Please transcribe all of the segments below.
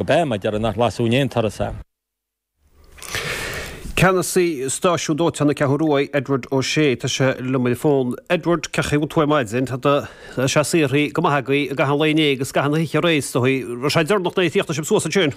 go beidh mé ag deireadh nach lasadh in aon turas é. Ceannasaí stáisiún dóiteáin na Ceathrún Rua, Edward O'Shea. Tá sé liom ar an bhfón. Edward, cén chaoi a bhfuil tú ar maidin. Tá sé saothraithe go maith agaibh. I gcaitheamh an lae inné agus i gcaitheamh na hoíche aréir. Is dóigh bhí sé deireanach nuair a chríochnaigh sibh suas ansin.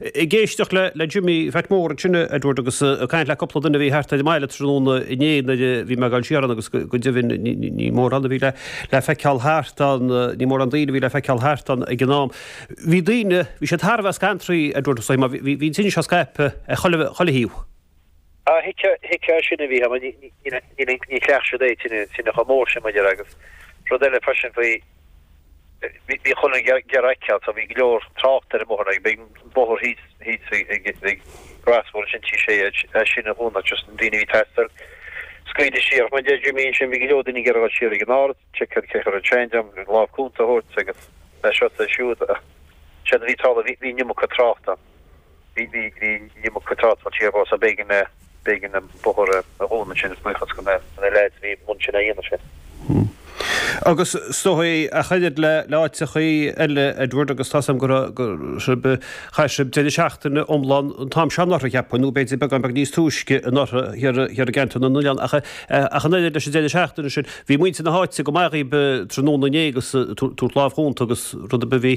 Ag éisteacht le Jimmy Phat Mór ansin, a Edward, agus ag caint le cúpla duine a bhí thart ar an mbaile tráthnóna inné nuair a bhí mé ag dul siar ann agus go deimhin ní mórán a bhí le feiceáil thart ann, ní mórán daoine a bhí le feiceáil thart ann ag an am. Bhí daoine, bhí siad thar a bheith scantraithe, a Edward, is dóigh liom, bhí an tine seo ag scaipeadh ar chuile thaobh. Á, thuigfeá sin a bhí ann, ní chleacht siad é an tine chomh mór sin, mo dhear, agus rud eile freisin faoi, Bhí chuile dhuine ag iarraidh a fheiceáil so bhí go leor trácht ar an mbóthar b'éigean an bóthar thíos ag an gcrosbhóthar ansin Tigh Sé ansin a dhúnadh just na daoine a bhí ag teastáil scaoileadh siar mar a deir Jimí ansin bhí go leor daoine ag iarraidh a dhul siar ag an árd check cad a chuir ansin dem an lámh chúnta a thabhairt agus a seo is a siúd ach séard a bhí ag tarlú bhí an iomarca trácht ann. Bhí, bhí, bhí, níl mo cuid talk faoi abhus ach b'éigean, b'éigean an bóthar a dhúnadh ansin is buíochas do na, do na lads a bhí ansin á dhéanamh sin. Hm. Agus is dóigh ach oiread le, le áiteachaí eile, Edward, agus tá's a'm go raibh, go raibh sibh, chaith sibh deireadh seachtaine iomlán an t-am seo anuraidh, cheapfainn, nó b'fhéidir beagán beag níos túisce anuraidh thiar, thiar i gceantar na nOileán ach, ach an oiread leis an deireadh seachtaine sin, bhí muintir na háite go maith dhaoib tráthnóna inné agus ag tabhairt lámh chúnta agus rud ar bith a bhí.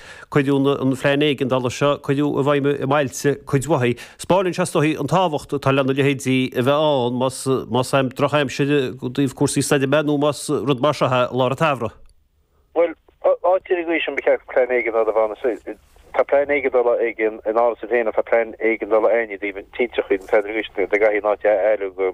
Cuireadh an plean éigeandála seo cuireadh i bhfeidhm i mbailte cuid mhaith. Spáineann sé is dóigh an tábhacht atá lena leithéidí a bheith ann más am drochaimsire i dtaobh cúrsaí stoirme nó más rud mar seo é i lár an tsamhraidh. Bhuel, áit ar an gcaoi sin ba cheart plean éigeandála a bheith ann. Tá plean éigeandála ag an Ard-Mhúsaem féin ach tá plean éigeandála ann i dtaobh tinte, an evacuation, dá gcaithfí an áit a fholmhú.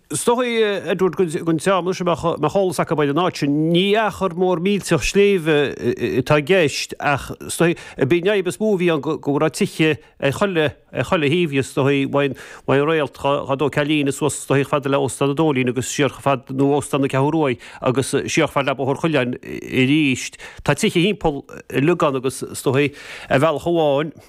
Is dóigh, Edward, don dream sin a mbeadh eolas acu ar an áit sin. Ní achar mór millteach sléibhe atá i gceist, ach is dóigh ba é an fhadhb is mó a bhí ann go raibh tithe ar chuile thaobh dhe. Is dóigh, ón Réalt go Bóthar an Chillín, is suas chomh fada le Óstán an Dóilín agus siar chomh fad nó Óstán na Ceathrún Rua agus siar chomh fad le Bóthar Chuileáin arís. Tá tithe thimpeall uilig ann agus is dóigh, ar bhealach amháin,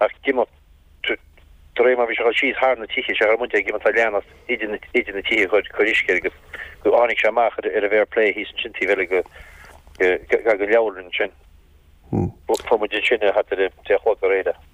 ach d'imigh droim bhí sé ag dul síos thar na tithe, sé an chaoi a raibh muid ag imeacht á leanacht idir na tithe ag cur uisce air agus go dtáinig sé amach ar an bhféar plé thíos ansin taobh eile den leabharlann ansin. Fuair muid ansin thart ar a deich a chlog aréir é.